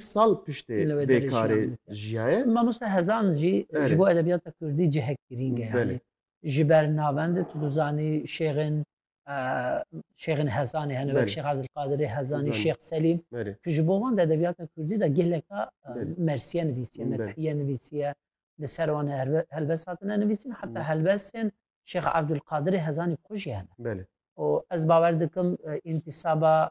sal piştê Li wê vê derê karê jiyan dike. jiyaye. Mamoste Hezan jî Belê. ji bo edebiyata Kurdî cihek girîng e. Belê. Yanî ji ber navendê tu dizanî şêxên şêxên Hezanê hene wek Belê. Şêx Evdilqadirê Hezanî, Hezanî. Şêx Selîm Belê. ku ji bo wan di edebiyata Kurdî de geleka Belê. mersiye nivîsiye, Belê. methiye nivîsiye, li ser wan herbe- helbest hatine nivîsîn heta Belê. helbestên Şêx Evdilqadirê Hezanî xwe jî hene. Belê. û ez bawer dikim e, întisaba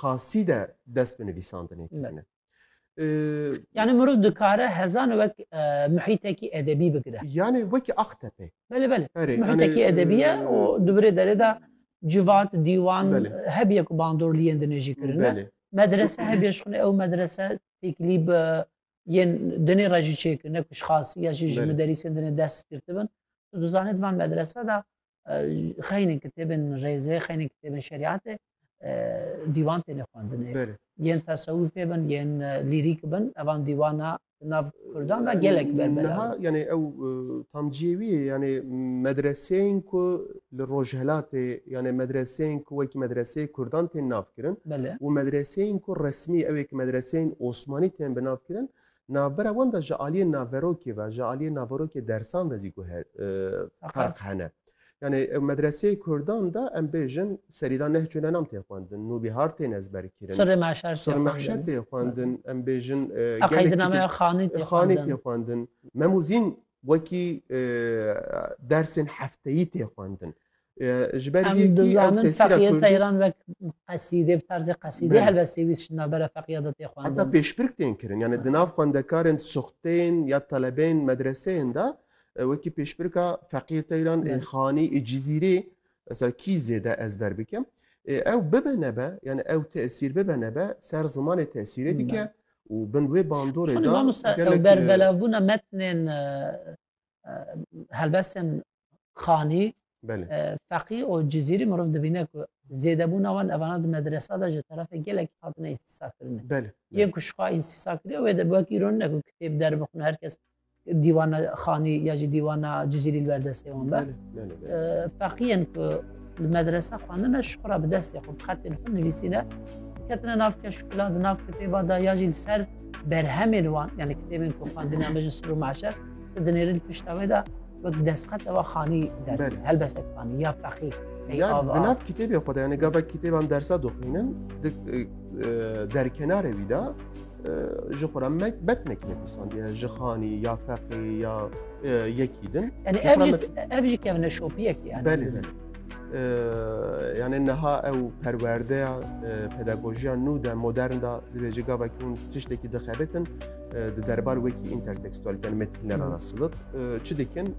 xasî de dest bi nivîsandinê kirine. Yani mirov dikare hezan wek muhîtekî edebî bigire. Yani wekî Axtepê. Belê belê. Muhîtekî edebî ye û di virê derê de civat, dîwan hebiye ku bandorliyên di nêjî kirine. Medrese hebiye ji xwinê ew medrese têkilî bi yên dinê re jî çêkirine ku ji xasî ya jî ji miderîsên dinê dest girtibin. Tu dizanî di van medrese de xeynên kitêbên rêzê xeynên kitêbên şerîatê dîwan têne xwendinê yên tesewîfê bin yên lîrîk bin evan dîwana nav kurdan da gelek berbeha yanê ew tamciyê wî yanê medreseyên ku li rojhelatê yanê medreseyên ku wekî medreseyê kurdan tên navkirin û medreseyên ku resmî ewê ki medreseyên osmanî tên bi navkirin Navbera wan de ji aliyê naverokê ve, ji aliyê naverokê dersan ve zî guher ferq hene. Yani ew medreseyê kurdan de em bêjin serî de nehc û nenam tê xwendin, nûbîhar tên ezberkirin. Surê mahşer tê xwendin. Surê mahşer tê xwendin. Em bêjin qeydinameya xanî tê xwendin. Xanî tê xwendin. Memûzîn wekî dersên hefteyî tê xwendin. Ji ber Em vê yekî ew dizanin tesîra feqîyê Kurdî Teyran wek qesîdê, bi tarzê qesîdê Belê. helbest pêwîst ji navbera feqîya de tê Heta xwendin. pêşbirk tên kirin. Yanê di nav xwendekarên soxteyên ya telebeyên medreseyên de e, wekî pêşbirka feqîyê Teyran ê Belê. Xanî ê Cizîrê mesela kî zêde ezber bikim. Ê ew bibe nebe, yanê ew tesîr bibe nebe ser zimanê tesîrê dike Belê. û bin wê bandorê Şonî de mamosta ew gelekî berbelevbûna metnên e, helbestên xanî feqî û cizîrî mirov dibîne ku zêdebûna wan evana di medresa de ji terefê gelekî hatine îstîsa kirine yê ku şixa îstîsa kiriye wê de bi wekî rûn ne ku kitêb derbixin her kes dîwana xanî ya jî dîwana cizîrî li berdestê wan be feqiyên ku li medresa xwendine şixura bi destê xwe bi xetên xwe nivîsîne ketine nav keşkula di nav kitêba da ya jî li ser berhemên wan yani kitêbên ku xwendina me ji sir û meşer tu dinêrî li pişta wê de wek destxet ewa xanî der Belê. helbestek xanî ya feqî ey Ya av di av nav kitêbê xwe de yani gavek kitêban dersa dixwînin di e, derkenarê wî de e, ji xwe re me bet nekine pîsandiye ji xanî ya feqî ya e, yekî din. yani Ji ev xwe re jî me- ev jî kevine şopiyekê yani. Belê belê. yani niha ew perwerdeya pedagojiya nû de modern da dibêje gavekî hûn tiştekî dixebitin di derbar wekî intertekstualîte yani metinlera ra silit çi dikin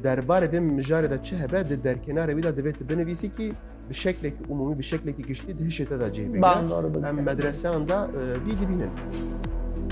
derbarê vê mijarê de çi hebe di derkênarê wî de divê tu binivîsî kî bi şeklekî umûmî bi şeklekî giştî di hişê te de cih bigire em medreseyan de vî dibînin.